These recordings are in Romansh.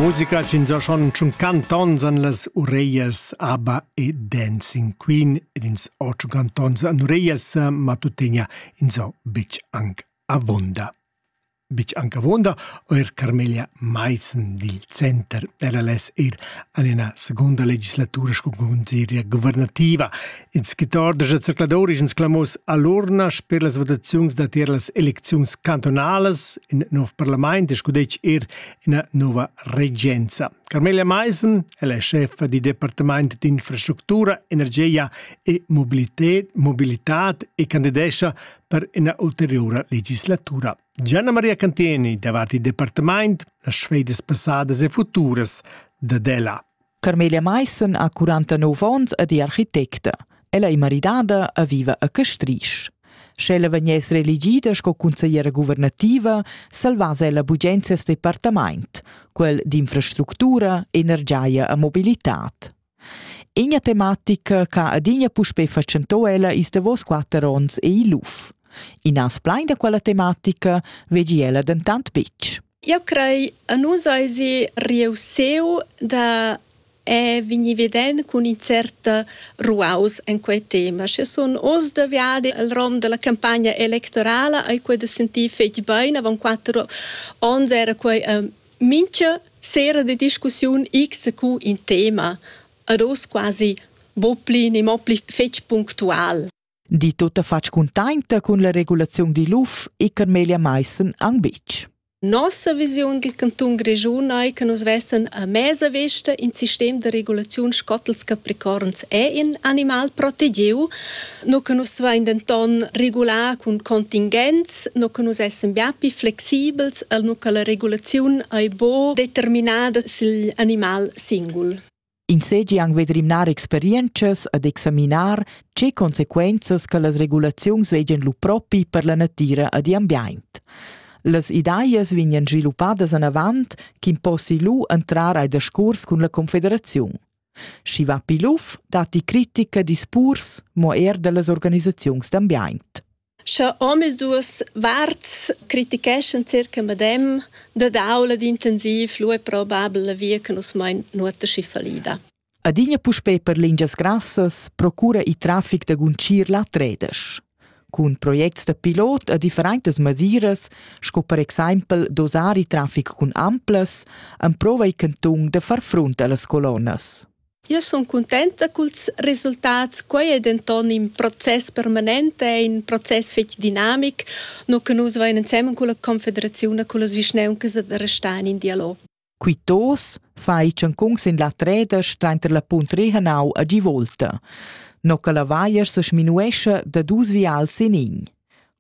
Musica c'ins ha schon tschun cantons an las ureias ABBA e Dancing Queen ed ins ho tschun cantons an ureias, ma tuttegna ins ho betg anc avonda. Betg anc avonda ho er Carmelia Maissen dil Center. Ella less ir an ina seconda legislatura sco consiglieria guvernativa. Il skittar da zercladur is clamos all'urna sper las votaziuns da tier las elecziuns cantonalas, in nov parlament e scudetg er ina nova regenza. Carmelia Meisen è la chefa di Departament d'infrastructura, energia e mobilità e candidescia per una ulteriore legislatura. Gianna Maria Cantieni davanti il Departament, las sfedes passadas e futuras da Della. Carmelia Maissen ha 49 onns ed è architecta. Ella è maridada e viva a Castrisch. Sch'ella vegniess reelegida sco consigliera guvernativa, salvass ella bugen ses departament, quel d'infrastructura, energia e mobilitad. Ina tematica che adina puspè fatschentò ella is davos quatter onns è il luf. In as plein da quella tematica vegi ella dentant betg. Jeu crei a nus eisi reussiu da eh vegnir veden cun in cert ruaus en quei tema. Sche sun oz da viadi el rom dalla campagna electorala ei quei da sentir fetg bein. Avon quatter onns era quei mintga sera de discussiun xq in tema. Ad oz quasi buca pli, ne mo pli fetg punctual. di tuttafatg cuntainta cun la regulaziun digl UF e Carmelia Meissen ang bitg. Nossa visiun dil canton Grischun ei che nus vessen a mesa vesta in sistem de regulaziun scottels capricorns e in animal protegiu, no che nus vein denton regular cun contingenz, no che nus essen bia più flexibels, al no che la regulaziun ei bo determinada sil animal singul. Ins seigi aunc ved rimnar experientschas ed examinar tgei consequenzas che las regulaziuns vegien lu propi per la natira ed igl ambient. Las ideas vegnan sviluppadas anavant ch'impossi lu entrar ai discuors cun la confederaziun. Schi va pil uff datti critica dispurs, mo er dallas organisaziuns d'ambient. Sche omisduas varts criticheschan circa medem, dad aula d'intensiv lu è probabel la via che nus mein nuota schi fallida. Adina puspei per lingias grassas procura il traffic da guncir la tredesch. Cun projects da pilot a differentas masiras, sco per exempel dosar il traffic cun amplas, emprova il cantun da far front allas colonnas. Io sun cuntenta culs resultats. Quai è denton in process permanent, è in process fetg dinamic, no che nus vain ensemen culla Confederaziun e cullas vischnauncas da restar in dialog. Quittos fa i ciancun sin la treda strainter la punt Rehanau a Givolta. No che la vaier se sminuescha da dus vials in in.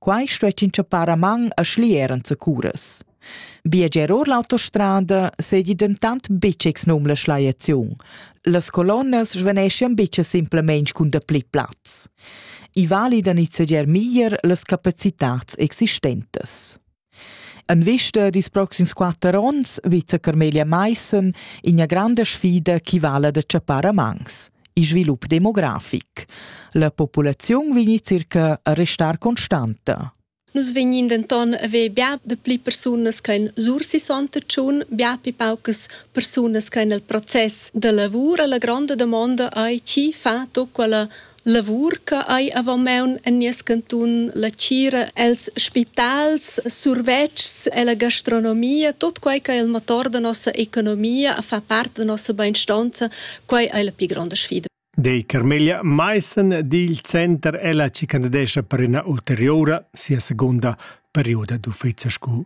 Quai stuess inchappar a man a schlier enzacuras. Biager or l'autostrada seigi dentant betg exnum la schliaziun. Las colonnas svaneschian betg simplamain cun dapli plaz. I vali da nizzegiar meglier las capacitads existentas. En vista dils proxims quater onns vizza Carmelia Maissen ina granda sfida che vala da tschappar a mans il svilup demografic. La populaziun vegn circa a restar constanta. Nus vegnin denton a ver bia de pli persunas che en Sursi Sontschun, bia pli paucas persunas che en il process de lavur. La gronda domanda ei chi fa tut quella Lavur che hai avon maun en nies cantun, la tgira els spitals, survetschs e la gastronomia, tot quei che il motor da nossa economia fa part da nossa beinstonza, quei ei la pli gronda sfida. Dei Carmelia Maissen dil Center ella ci candidescha per ina ulteriora sia segunda perioda d'uffizi scu